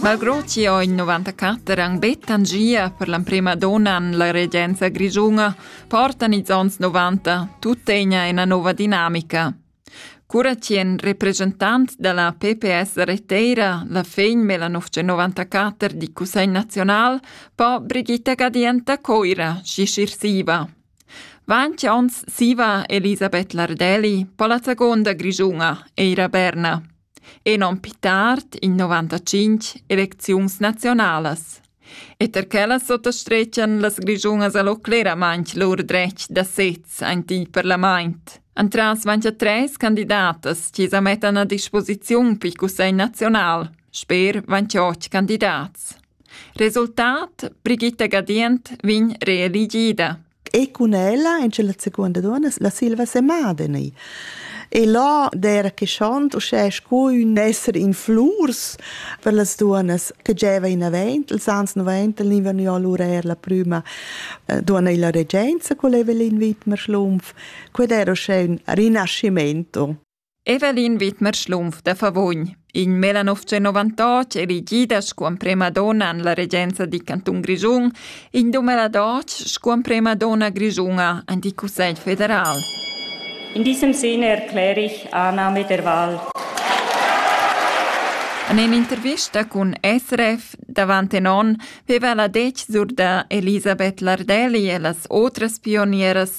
Malgrò chi ho in 94 han bet tangia per l'emprema donna en la regenza grischuna, portan ils ons 90 tuttegna ina nova dinamica. Cura chi en representant da la PPS reteira la fegn Melanov 94 di Cussegl Nazional po Brigitta Gadienta coira si sirsiva. Vanci ons siva Elisabeth Lardelli po la seconda grischuna, Eira Berna. Enom pi tard, in 95, elecziuns naziunalas. E ter quellas sottastretschan las grischunas allo cleramaint lur dretg da sez aint il parlament. Antras vain cha tres candidatas chi sa mettan a disposiziun pi cussegl nazional, sper vain cha och candidats. Resultat, Brigitta Gadient vegn reeligida. e cun ella in la seconda donna la Silva Semadeni. E là der che schont uschè sco un esser in flurs per las duonas che gieva in avent, ils ans 90 l'inverno ja l'urer la prüma eh, donna illa regenza, qual eva l'invit mar schlumpf, qued era uschè un rinascimento. Evelin Widmer Schlumpf da Favogn, in 1998 elegida sco emprema donna en la regenza da cantun Grischun, in 2012 sco emprema donna grischuna en il Cussegl federal. In diesem Sinne erkläre ich Annahme der Wahl. En in'intervista cun SRF davant en onn veva la detg sur da Elisabeth Lardelli e las otras pionieras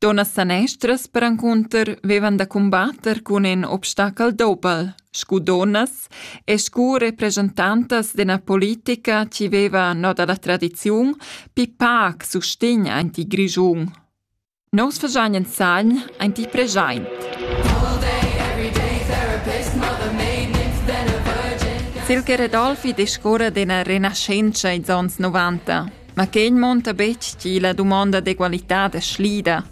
Dunnas sanestras perencunter vevan da cumbatter cun in obstachel dobel, scu dunnas e scu represchentantas d'üna politica chi veva no da la tradiziun pii pac sustegn aint il Grischun. Nus faschan insagn aint il preschaint. Silke Redolfi discurra d'üna renaschentscha ils ons novanta. Ma quei munta betg tgi la dumonda d'egualitad è slida.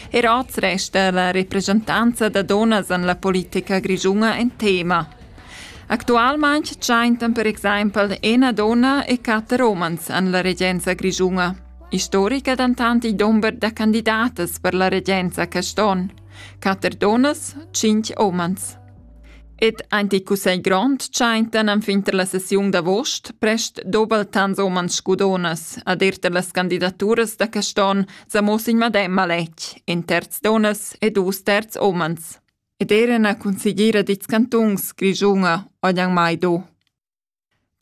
Er oz resta la represchentanza da dunnas en la politica grischuna en tema. Actualmain tschentan per exempel ina donna e quatter umans en la regenza grischuna. Istorica dentant il dumber da candidatas per la regenza quest onn. Quatter dunnas, cinc umans. Ed aint il cussegl grond tschaintan enfin tar la sessiun d'avost prest doubel tants umans scudonas ad ir tar las candidaturas da quest'on s'ha muoss in madem maletg, in terz dunnas e dus terz umans. Ed eran a consigliera dits cantuns Grischunga ojan mai do.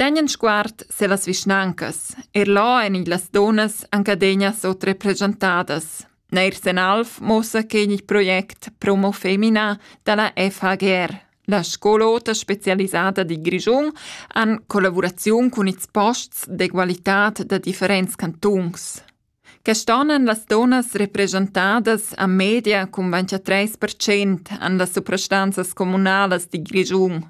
Tegn en sguard se las vischnancas, er là ein igl las dunnas ancadegnas oz represchentadas. Neir sen Alf muossa che igl project Promo Femina dalla FHGR. La scol'ota specialisada di Grischun han collavuraziun cun ils posts d'egualitad da differents cantuns. Quest'ann han las donas represchentadas a media cun 23% an las suprastanzas comunalas di Grischun.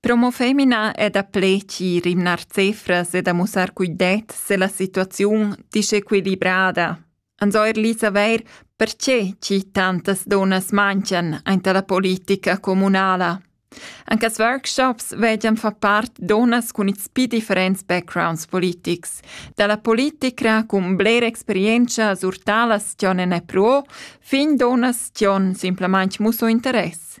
Promo femina è daplè chi rimnar cefras e da mussar cuidet se la situaziun disequilibrada. Anzoir li saver perche chi tantas donas mancan aint la politica comunala. Anche as workshops vegian fa part donas cun its pi differents backgrounds politics. Dalla politica cun bler experienza sur talas tion ne pruo, fin donas tion simplamaint musso interess.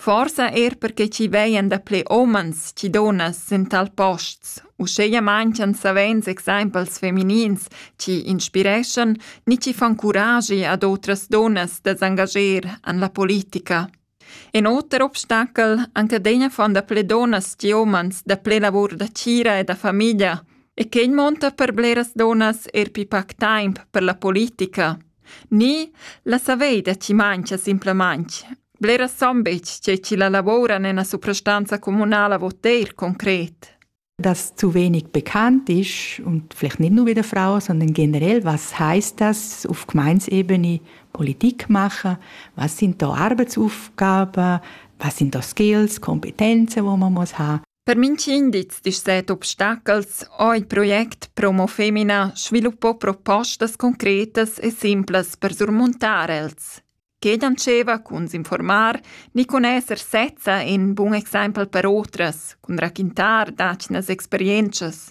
Forsa er perche chi vegnan daplè umans chi dunnas sün tal posts, uscheia manchian savens exaimpels feminins chi inspireschan ni chi fan curagi ad otras dunnas da s'angager an la politica. In oter obstachel anc adegna fan daplè dunnas chi umans daplè lavur da tgira e da famiglia e quegl monta per bleras dunnas er pi pac taimp per la politica. Ni, la savei da chi mancha simplamaing. Bleras son betg tge chi la lavoura nella suprastanza communala vo teir concret. Das zu wenig bekannt ist und vielleicht nicht nur wieder Frauen, sondern generell, was heißt das auf Gemeinsebene Politik machen? Was sind da Arbeitsaufgaben? Was sind da Skills, Kompetenzen, die man muss haben? Per minch'indiz disch set obstachels ho il project Promo Femina sviluppò propostas concretas e simplas per surmuntar els. Che dandscheva cun s'informar ni cun esser sezza in bun exempel per otras, cun raquintar dacinas experientschas.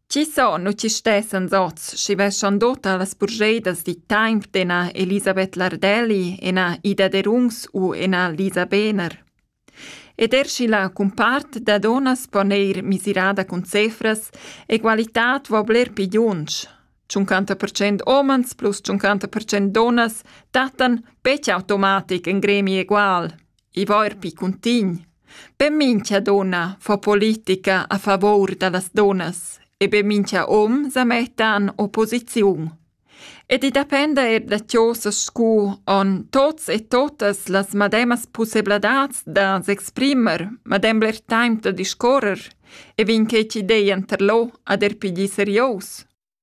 Chi so nu chi stessan zots schi veschan dota las burgeidas di taimp d'ena Elisabeth Lardelli, ena Ida Derungs u ena Lisa Behner. Ed er schi la cumpart da donas po neir misirada cun cefras, egualitad vo bler pi giunsch. 50% omans plus 50% donas dattan betg automatic in gremi egual. I va eir pi cuntign. Be mincha dunna fa politica a favor da las dunnas e be mincha hom sa metta in opposiziun. Ed i dependa eir da chosas scu on tots e totas las mademas pussebladats da s'exprimer, madem bler taimp da discorrer e vin que ch'idea interlò ad er pi di serios.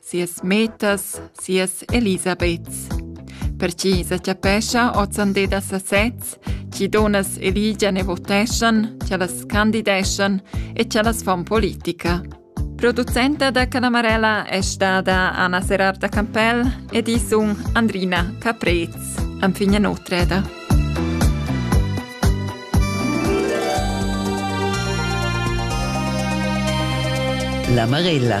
sias metas, sias Elisabeths. Per chi sa chapescha ozande da sasez, chi donas eligian e voteschan, chi las candideschan e chi las fon politica. Producenta da Canamarella è stata Anna Serarda Campell ed i sun Andrina Caprez. Anfigna Notreda. La Marella.